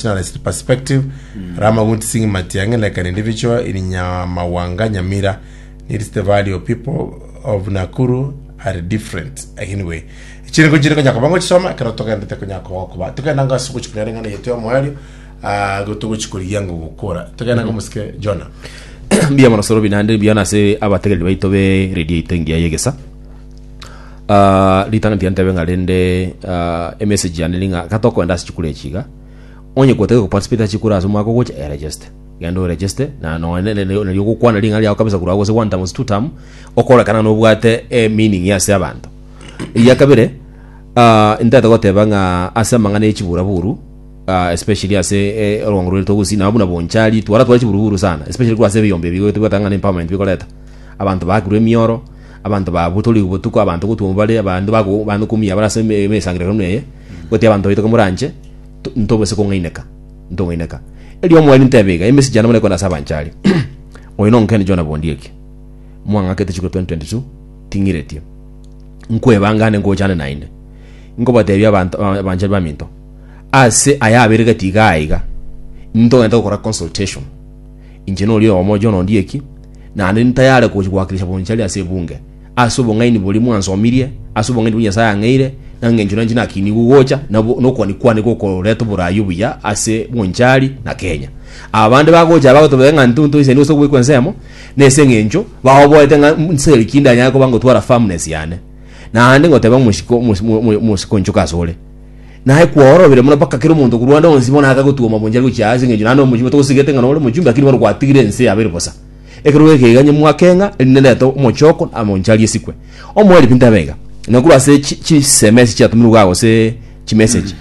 Nationalist Perspective, Rama Guntising Matiang'i leka nindi bichwa in Nyamawanga Nyamira needs the value people of Nakuru are different anyway chiringo chiri konya koba ngochisoma ekero togendete konya koba gokoba togenda ngo ase ogochikuna ere ng'ana yetu ya omoerio ah, go togochikorigia ngo gokora togenda ngo mosike Jonah mbuya mono sorobi naende mbuya nase abategereri baito be radio yaito engiya ya egesa Ah, ritang'ani tiga ntebe ng'a rende ah, emessage yane ri ng'a kata okoenda ase chikura echi iga onye gotake goparticipate ase chikura ase omwaka ogocha eregeste genda oregeste na nonya ne- ne- ne- nario ogokwana ring'a riago kabisa korwa gose one term gose two term okorekana nobwate eh, meaning ya ase abanto eria kabere ah, ntete goteba ng'a ase amang'ana ya chiburaburu ah, especially ase eh, orwango rwaito gusii nabo buna bonchari twara twara chiburuburu sana especially korwa ase ebiyombe ebi goetwa bwatang'ana empowerment bikoreta Abanto baakirwe emioro, abanto babutorigwe botuko, abanto gotwomwa bare, abanto bago- abanto kumia bare ase eme- emesangererekano buna eye, goti abanto baito komoranche, to- ntobose kong'aineka, ntong'aineka. Erio omwani ntebe iga, emesich yane bono ekorana ase abanche aria, oyo nonkende John Bondieki, mwang'akete chiko 2022, ting'iretie. Nkwebanga ande ngochane naende. Nkobatebia abanto aba- abanche baminto, ase aya abere gati iga aiga, intogenda gokora consultation, Inche nori oyomo John Ondieki, nande ntayare gochi gwakirisha bonchari ase ebunge, ase obong'aini boria mwansomirie, ase obong'aini boria Nyasae ang'eire, na ng'encho nanchi nakinigwe gocha nabo nokwane kwane gokoreta oboraai obuya ase bonchari na Kenya. Abande bagocha aba gotobeka ng'a nto ntoisani gose ogwekwa ensemo, nese ng'encho baoboete ng'a nseri ki ndanyare koba ngotwara firmness yane. Naende ngoteba omosiko omosiko onchoke asore. Naye kworobire mono mpaka kera omonto korwa ande onsi bono akagotugwa mabonchari gochia aase, engencho naende omochie batogosigete ng'a nore omochumbi, lakini bono gwatigire ense yabo ere bosa. Ekero bwegeiga inye mwake ng'a erinde ndete omochoko na mabonchari esikwe. Omoerio pintabe iga, na korwa ase chi- chiseme ase chiatumirwe iga gose chimessage,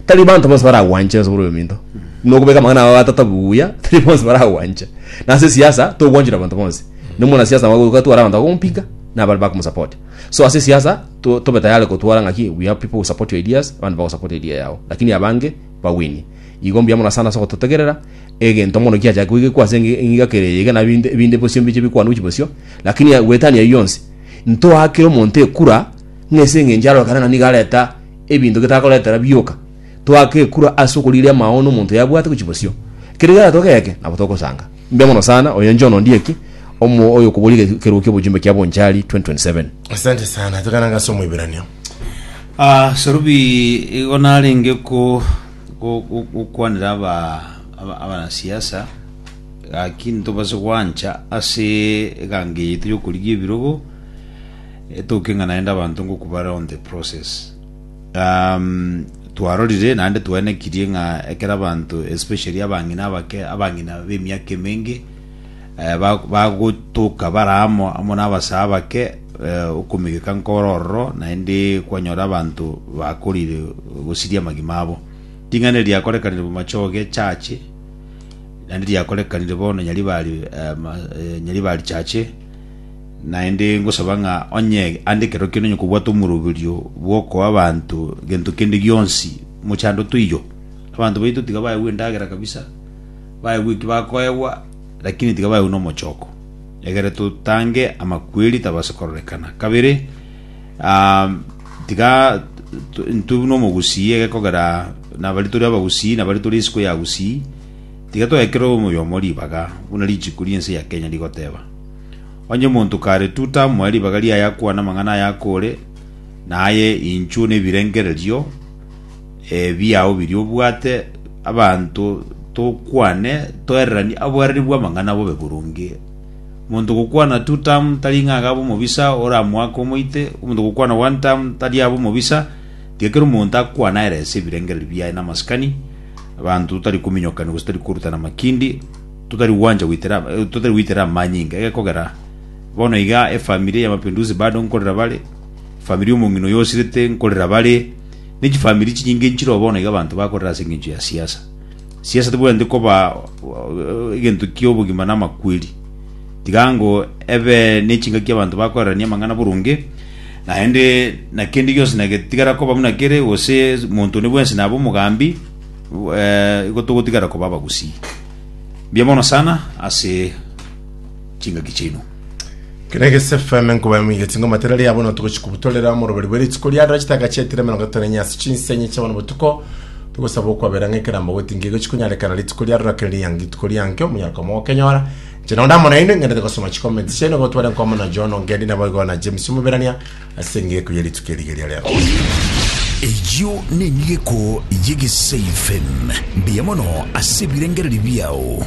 tari banto bonsi baragwanche nonsi bore oyominto. Buna okobeka amang'ana abo atata buya, tari bonsi baragwanche. Na ase siasa, togwanchire abanto bonsi. Nomwanasiasa nabo ogoika tware abanto bakomompinga, na abare bakomosupport. So ase siasa to, tobe tayari gotwara ng'aki we have people who support your ideas, abande bagosupport idea yao. Lakini abange bawinie. Igo mbuya mono sana ase ogototegerera egento mono kiachake koigekwa ase engi- engiga kere eyeiga na binde binde bosio mbiche bikwanwa chi bosio. Lakini ya- gwetania eyio yonsi ntoakire omonto ekura ng'ese eng'encho arorokane na nigo areta ebinto getakoretera bioka. Toake ekura ase okorigeria amaono omonto yabwate gochi bosio. Kere egento geke nabo togosanga. Mbuya mono sana, oyo John Ondieki, omo oyokoboria ekerugo ki'obochumbe kia Bonchari 2027. Asante sana, tokana ngase omoiberanio. Ah, Sarubi igo narenge ko go- go- gokwanera aba aba- abanasiasa gaki ntobase gwancha ase eganga eye yaito yokorigia ebirogo etoke ng'a naende abanto ngoku bare on the process Um, twarorire naende twaenekirie ng'a ekero abanto especially abang'ina abake abang'ina b'emiaka emenge eh, ba- bagotoka bara amo amo n'abasaa bake eh, okomegeka nkore ororo naende kwanyora abanto bakorire gosiria amagima abo ring'ana eri riakorekanire bomachoge echache naende riakorekanire bono nyaribari eh, ma- eh, nyaribari chache Naende ngosaba ng'a onye ande ekero kende onye kobwate omoroberio bw'okoa abanto gento kende gionsi mochando toiyo. Abanto baito tiga baegwe endagera kabisa, baegwe eki bakoegwa, lakini tiga baegwe n'omochoko, egere totange amakweri tabase kororekana. Kabere, ah, tiga t- ntwe buna omogusii egekogera nabari tore abagusii nabari tore isiko ya gusii, tiga toekere omoyomo ribaga buna richiko ri'ense ya Kenya rigoteba. Onye omonto kare tu tamoe ribaga riaye akwane amang'ana aya akore, na aye inchuo nebirengererio eh, biao biria obwate, abanto tokwane toereranie aboereri bw'amang'ana bobe boronge. Omonto gokwana tu tam tari ng'a agabe omobisa oramoake omoite, omonto gokwana one tam tari abe omobisa, tiga kera omonto akwane aerese ebirengererio biaye namasikani, abanto tari kominyokania gose tari korutana makindi, Totari gwancha goitera totari goitera amanyinga egekogera bono iga efamiri ya Mapinduzi bado nkorera bare efamiri ya omong'ina oyo osirete nkorera bare ne chifamiri chinyinge nchiroo bono iga abanto bakorera ase engencho ya siasa siasa tibwenerete koba egento kia obogima na amakweri tiga ngo ebe ne chingaki abanto bakorerania amang'ana boronge naende na kende gionsi na getigara koba buna kere gose monto one bwensi nabe omogambi igo togotigara koba abagusii. Mbuya mono sana ase chingaki chiaino. Kera egese FM nkobae moigeti ngoma tera ria bono togochi kubutorera omoroberi bwe rituko ria dora chitaka chietire emerongo etano enye ase chinsenye chia bono botuko togosaba okwabera ng'a ekerambo gotinga egochi konyarekana rituko ria dora kere riange rituko riange omonyara kwamo gokenyora inche nondo amo nainwe ng'endete gosoma chicomments chiaino gotware nkwamo na John Ongedi nabo igo na James Omoberania Ase engeko ye rituko eri rigeria ria Pentekosti. Eyio neng'eko y'egesaifen, mbuya mono ase ebirengererio biao.